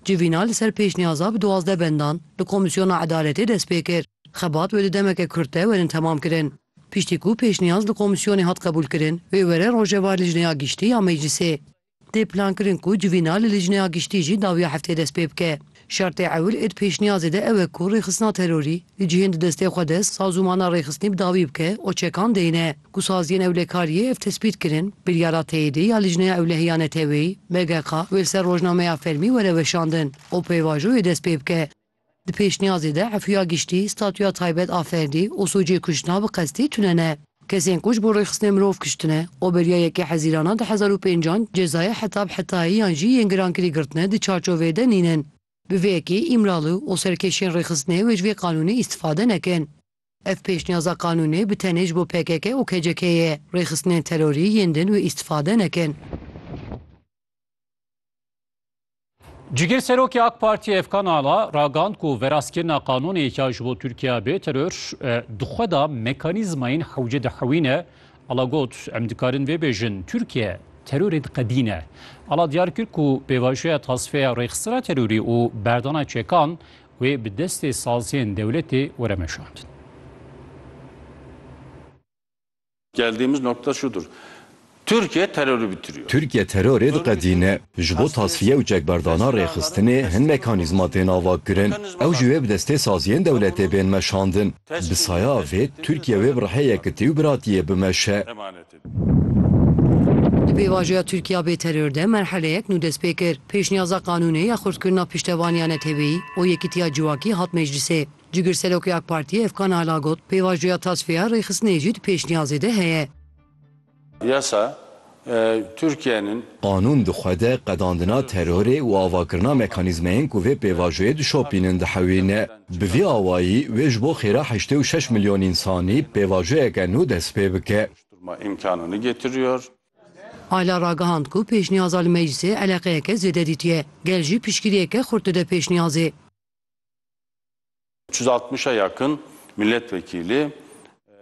Civîna li ser pêşniyaza bi duwazdeh bendan li Komîsyona Edaletê dest pê kir. Xebat wê di demeke kurte werin temam kirin. Piştî ku pêşniyaz li Komîsyonê hat qebûlkirin, wê were Rojeva Lijneya Giştî ya Meclîsê. Tê plankirin ku civîna li Lijneya Giştî jî dawiya heftê dest pê bike. Şertê ewil ê di pêşniyazê de ew e ku rêxistina terorî li cihên di destê xwe de sazûmana rêxistinî bi dawî bike û çekan deyne. Ku saziyên ewlekariyê ev tespît kirin, biryara teyidî ya Lijneya Ewlehiya Neteweyî, BGK, wê li ser rojnameya fermî were weşandin û pêvajoyê dest pê bike. Di pêşniyazê de Efuya Giştî statuya taybet a ferdî û sûcê kuştina bi qestî tune ne. Kesên ku ji bo rêxistinê mirov kiştine û beriya yekê hezîrana di hezar û pêncan cezayê heta bi hetayî yan jî yên girankirî girtine di çarçoveyê de nînin. Bi vê yekê Îmralı û serkêşên rêxistinê wê ji vê qanûnê îstifade nekin. Ev pêşniyaza qanûnê bi tenê ji bo pkk û KCK'ê ye. Rêxistinên terorî yên din wê îstifade nekin. Cîgir Serokê AK Partiyê Efkan Ala ragand ku veraskirina qanûnê ya ji bo Tirkiya bê teror di xwe de mekanîzmayên hewce dihewîne. Ala got, Em dikarin vê bêjin, Tirkiye terorê diqedîne. Ala diyar kir ku pêvajoya tasfeya rêxistina terorî û berdana çekan Wê bi destê saziyên dewletê were meşandin. Geldiğimiz nokta şudur. Türkiye terörü bitiriyor. Tirkiye terorê diqedîne. Ji bo tasfiye û çekberdana rêxistinê hin mekanîzma tên avakirin. Ew jî wê bi destê saziyên dewletê bên meşandin. Bi saya vê Tirkiye wê bi rihê yekitî û biratiyê bimeşe. Di pêvajoya Tirkiya bê teror de merheleyek nû dest pê kir. Pêşniyaza qanûnê ya xurtkirina piştevaniya neteweyî û yekîtiya civakî hat meclîsê. Cigirserokê AK Partiyê Efkan Ala got, Pêvajoya tasfiya rêxistinê jî di pêşniyazê de heye. Yasa Tirkiyenin. Qanûn di xwe de qedandina terorê û avakirina mekanîzmeyên ku vê pêvajoyê dişopînin dihewîne. Bi vî awayî wê ji bo xêra heştê û şeş milyon însanî pêvajoyeke nû dest pê bike. Ayla ragihand ku pêşniyaza li meclîsê eleqeyeke zêde dîtiye. Gel jî piştgiriyeke xurt dide pêşniyazê.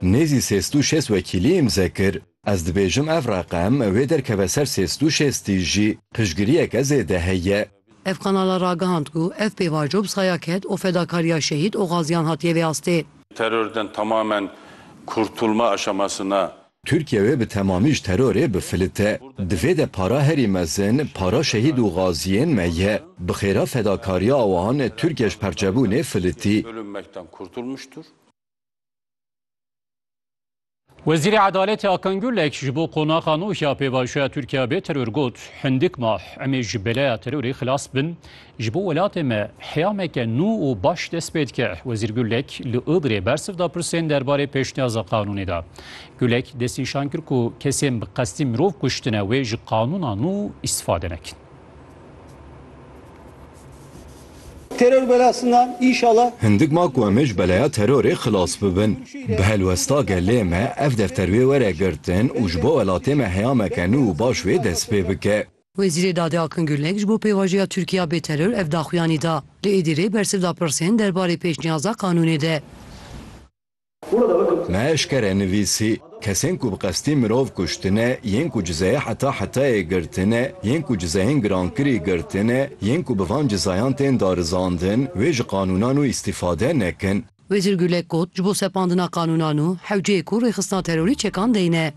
Nêzî sê sed û şêst wekîlî îmze kir. Ez dibêjim ev reqem wê derkeve ser sê sed û şêstî jî piştgiriyeke zêde heye. Ev kanala ragihand ku ev pêvajo bi saya ked û fedakariya şehîd û gaziyan hatiye vê astê. Terorden tamamen kurtulma aşaması na. Tirkiye wê bi temamî ji terorê bifilite. Di vê de para herî mezin para şehîd û gaziyên me ye. Bi xêra fedakariya wan Tirkiye ji perçebûnê filitî. Wezîrê Edaletê Akan Gulek ji bo qonaxa nû ya pêvajoya Tirkiya bê teror got, Hindik ma emê ji beleya terorê xilas bin, ji bo welatê me heyameke nû û baş dest pê dike. Wezîr Gulek li Ogrê bersiv da pirsên derbarê pêşniyaza qanûnê de. Gulek destnîşan kir ku kesên bi qestî mirov kuştine wê ji qanûna nû îstîfade nekin. Teror belasindan inşallah. Hindik ma ku em ê ji beleya terorê xilas bibin. Bi helwesta gelê me ev defter wê were girtin û ji bo welatê me heyameke nû û baş wê dest pê bike. Wezîrê Dadê Akin Gurlek ji bo pêvajoya Tirkiya bê teror ev daxuyanî da. Li Êdirê bersiv da pirsên derbarê pêşniyaza qanûnê de. Me eşkere nivîsî, Kesên ku bi qestî mirov kuştine, yên ku cizeyê heta hetayê girtine, yên ku cizeyên girankirî girtine, yên ku bi van cizayan tên darizandin, wê ji qanûnan û îstîfade nekin. Wezîr Gulek got, Ji bo sepandina qanûnan û hewceyê ku rêxistina terorî çekan deyne,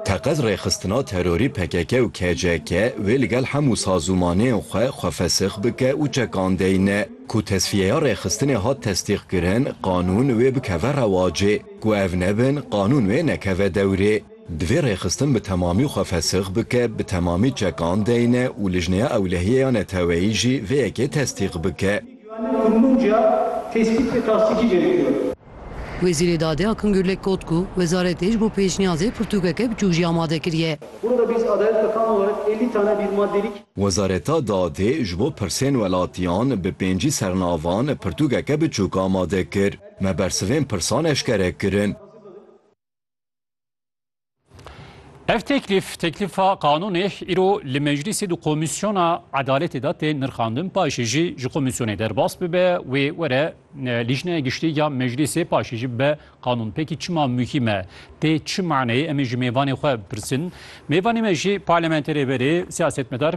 Teqez rêxistina terorî pkk û KCK wê li gel hemû sazûmanên xwe xwefesix bike û çekandeyî ne ku tesfîyeya rêxistinê hat testîqkirin qanûn wê bikeve rewacê, ku ev nebin qanûn wê nekeve dewrê. Divê rêxistin bi temamî xwe fesix bike, bi temamî çekandeyî ne û Lijneya Ewlehiyê ya Neteweyî jî vê yekê testîq bike. Wezîrê Dadê Akın Gürlek got ku wezaretê ji bo pêşniyazê pirtûkeke biçûk jî amade kiriye. Wezareta Dadê ji bo pirsên welatiyan bi pêncî sernavan pirtûkeke biçûk amade kir. Me bersivên pirsan eşkere kirin. Ev teklîf teklîfa qanûnê îro li meclîsê di komîsyona edaletê de tê nirxandin paşê jî ji komîsyonê derbas bibe wê were lîjneya giştî ya meclîsê paşê jî be qanûn pekî çima muhîm e tê çi maneyê em ê ji mêvanê xwe pirsin mêvanê me jî parlamenterê berê siyasetmedar